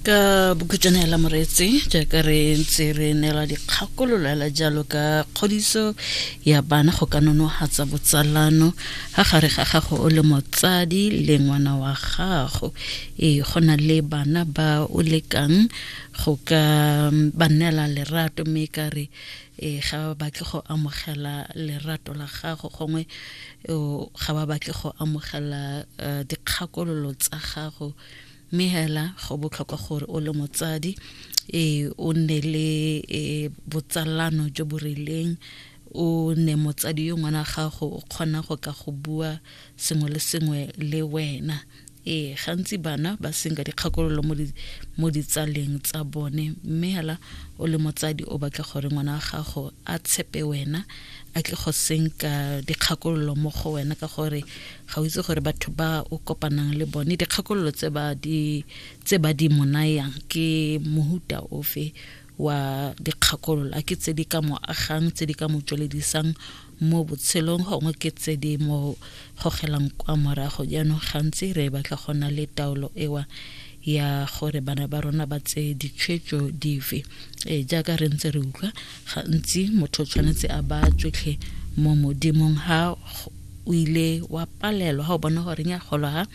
ka bokhutšwana la moretse jaaka re ntse re neela dikgakololo ela jalo ka kgodiso ya bana go ka nonogatsa botsalano ga gare ga gago o le motsadi le ngwana wa gago ee go na le bana ba o lekang go ka ba neela lerato mme e ka re ee ga ba batle go amogela lerato la gago gongwe ga ba batle go amogela eh, dikgakololo tsa gago Mme hela go botlhokwa gore o le motsadi e o nne le e, botsalano jo bo rileng, o ne motsadi yo ngwana gago o kgona go ka go bua sengwe le sengwe le wena. Ee, gantsi bana ba senka dikgakololo mo ditsaleng tsa bone, mme hela o le motsadi o batla gore ngwana wa gago a tshepe wena, a tle go senka dikgakololo mo go wena ka gore ga o itse gore batho ba o kopanang le bone dikgakololo tse ba di tse ba di monayang ke mohuta ofe wa dikgakololo a ke tse di ka mo agang tse di ka mo tsweledisang mo botshelong gongwe ke tse di mo gogelang kwa morago jaanong gantsi re batla go na le taolo ewa ya gore bana ba rona ba tseye ditshwetso dife e jaaka re ntse re utlwa gantsi motho tshwanetse a ba tsotlhe mo modimong ha o ile wa palelwa ga o bona gore nya golo ga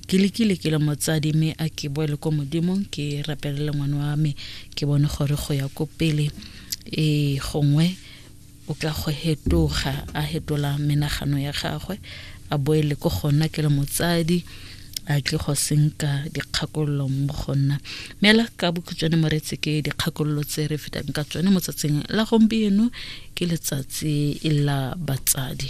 ke lekile ke le motsadi mme a ke boele ko modimong ke rapelele ngwana wa me ke bone gore go ya ko pele e gongwe o ka go hetoga a hetola menagano ya gagwe a boele ko gona ke le motsadi a tle go senka dikgakololo mo go nna mme la ka bokhutshwane moretse ke dikgakololo tse re fetang ka tsone mo tsatsing la gompieno ke letsatsi la batsadi